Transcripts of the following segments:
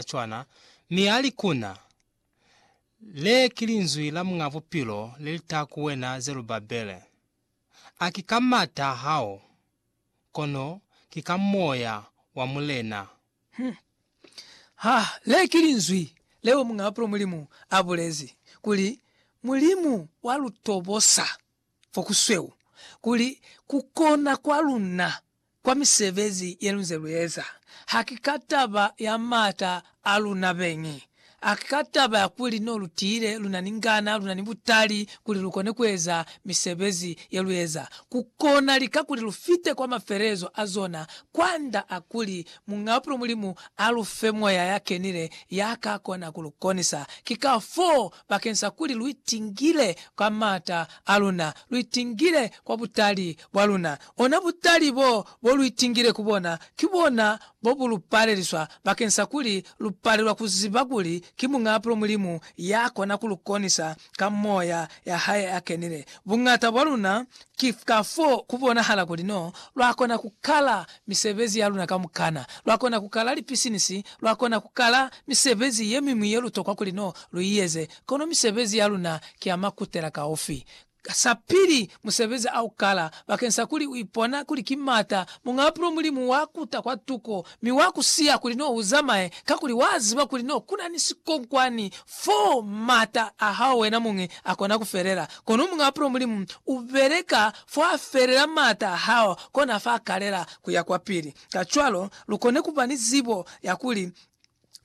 za cwana, mi ali ku na, Le ki linzwi la Muñ'a Bupilo le li taha ku wena Zerubabele, A ki ka mata a hao, kono ki ka Moya wa Mulena. Hmm. Ha, le ki linzwi leo Muñ'a Bupilo Mulimu a bulezi, kuli, Mulimu wa lu tobosa fo ku sweu, kuli ku kona kwa luna Kwa misebezi yelunze lueza, haki ka taba ya maata aluna beñi, haki ka taba ya kuli no lutile luna ni ngana, luna ni butali kuli lukone kueza misebezi yelueza, kukona lika kuli lufite kwa mafelelezo a zona, kwanda a kuli Mungaapulo Mulimu alufe Moya yakenile yaka kona kulukonisa. Ki kafoo bakeng sa kuli lu itingile ka m'ata a luna, lu itingile kwa butali bwa luna. Ona butali bo, bo lu itingile ku bona, ki bona bo bu lu paleliswa bakeng sa kuli lu palelwa ku ziba kuli ki Muñaapulo Mulimu ya kona ku lu konisa ka Moya ya Hae a Kenile. Buñata bwa luna Ki kafoo ku bonahala kuli no lwa kona ku kala misebezi ya luna kamukana. Lwa kona ku kala lipisinisi, lwa kona ku kala misebezi ye miñwi ye lu tokwa kuli no lu i eze, kono misebezi ya luna ki ya makutelakaufi. Sapili, musebezi a u kala bakeni sa kuli u ipona kuli ki m'ata, muñ'a pulo Mulimu wa kuta kwa tuko Mi wa ku siya kuli n'o u zamaye, kakuli wa ziba kuli n'o ku na ni sikonkwani fo m'ata a hao wena muñi a kona ku felela. Kono Muñ'a Bupilo Mulimu u beleka fo a felela m'ata a hao, kona fa kalela ku ya kwapili. Kacwalo, lu kone ku ba ni zibo ya kuli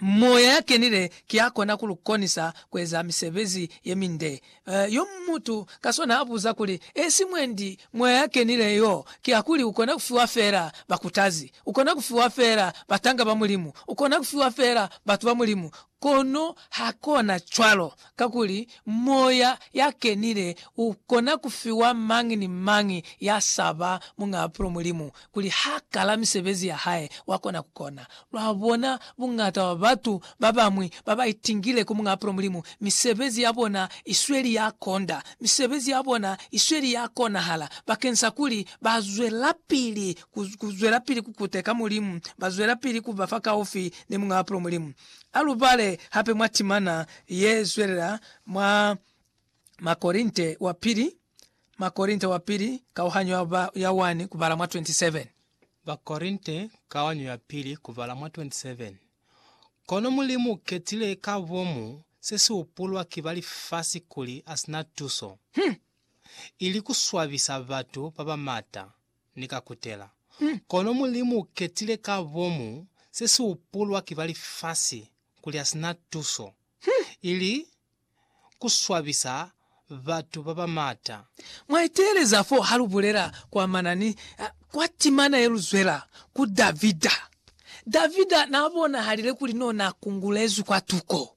Moya ya Kenile ki ya kona ku lu konisa ku eza misebezi ye minde. Yo mutu ka swana a buza kuli, E si mwendi Moya ya Kenile yo ki ya kuli u kona ku fiwa fela bakutazi, u kona ku fiwa fela batanga ba Mulimu, u kona ku fiwa fela batu ba Mulimu, kono ha kona cwalo. Kakuli Moya ya Kenile u kona ku fiwa mañi ni mañi ya saba Muñ'a Apulo Mulimu, kuli ha kala misebezi ya Hae, wa kona ku kona. Lwa bona, buñata bwa batu ba bañwi ba ba itingile ku Muñ'a Apulo Mulimu, misebezi ya bona i sweli ya konda. Misebezi ya bona i sweli ya konahala, bakeñsakuli ba zwelapili ku, ku zwelapili ku kuteka Mulimu, ba zwelapili ku ba fa kaufi ni Muñ'a Apulo Mulimu. A lu bale hape mwa timana ye zwelela mwa Makorinte wa Pili, Makorinte wa Pili, kauhanyo ya ba, ya 1 kubala mwa 27. Bakorinte, kauhanyo ya pili, kubala mwa 27. Kono Mulimu u ketile ka bomu se si hupulwa ki ba lifasi kuli a si na tuso, ili ku swabisa batu ba ba mata, ni ka kutela. Kono Mulimu u ketile ka bomu se si upulwa ki ba lifasi kuli ha si na tuso, ili ku swabisa batu ba ba maata. Mwa iteeleza fo ha lu bulela kwamana ni kwa timana ye lu zwela ku Davida. Davida naa bonahalile kuli no na kungulezwi kwa tuko.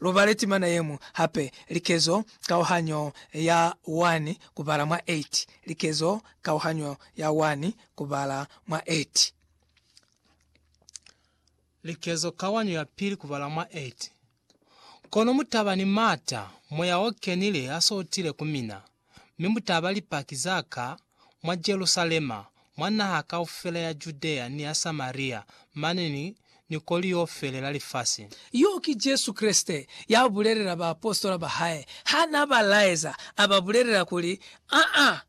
Lu bale timana yeñwi hape, Likezo kauhanyo ya 1 kubala mwa 8, Likezo kauhanyo ya 1 kubala mwa 8. Likezo kauhanyo ya pili kubala mwa 8, Kono mutaba ni mata, Moya o Kenile aso utile ku mina. mi mu ta ba Lipaki za Ka mwa Jerusalema, mwa naha kaufela ya Judea ni ya Samaria, mane ni, ni ko liofele la lifasi. Yo ki Jesu Kreste ya bulelela baapositola ba hae ha n'a ba laeza, a ba bulelela kuli, Aa,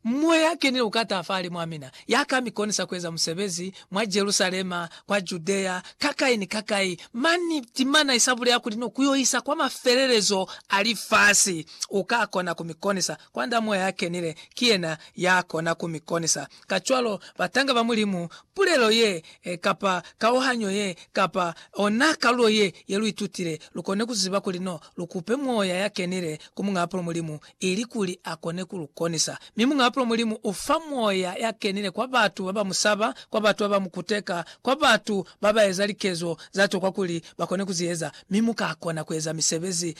Moya a Kenile u ka ta fahalimu a mina, Ya ka mi konisa ku eza musebezi mwa Jerusalema, kwa Judea, kakai ni kakai, mani timana i sa bulela kuli no ku yo isa kwa mafelelezo a lifasi. U ka kona ku mi konisa. Kwa Nda Moya ya Kenile, ki yena ya kona ku mi konisa. Kacwalo, batanga ba Mulimu, pulelo ye, kapa kauhanyo ye, kapa ona kalulo ye, ye lu itutile, lu kone ku ziba kuli no lu kupe Moya ya Kenile ku Muñaapulo Mulimu, ilikuli akone kulukonisa. Mi Muñ'a Bupilo Mulimu ufa Moya yakenile kwa batu babamusaba, kwa batu babamukuteka, kwa batu babaeza likezo zatokwa kuli bakone kuzieza, mi mukakona kueza misebezi ka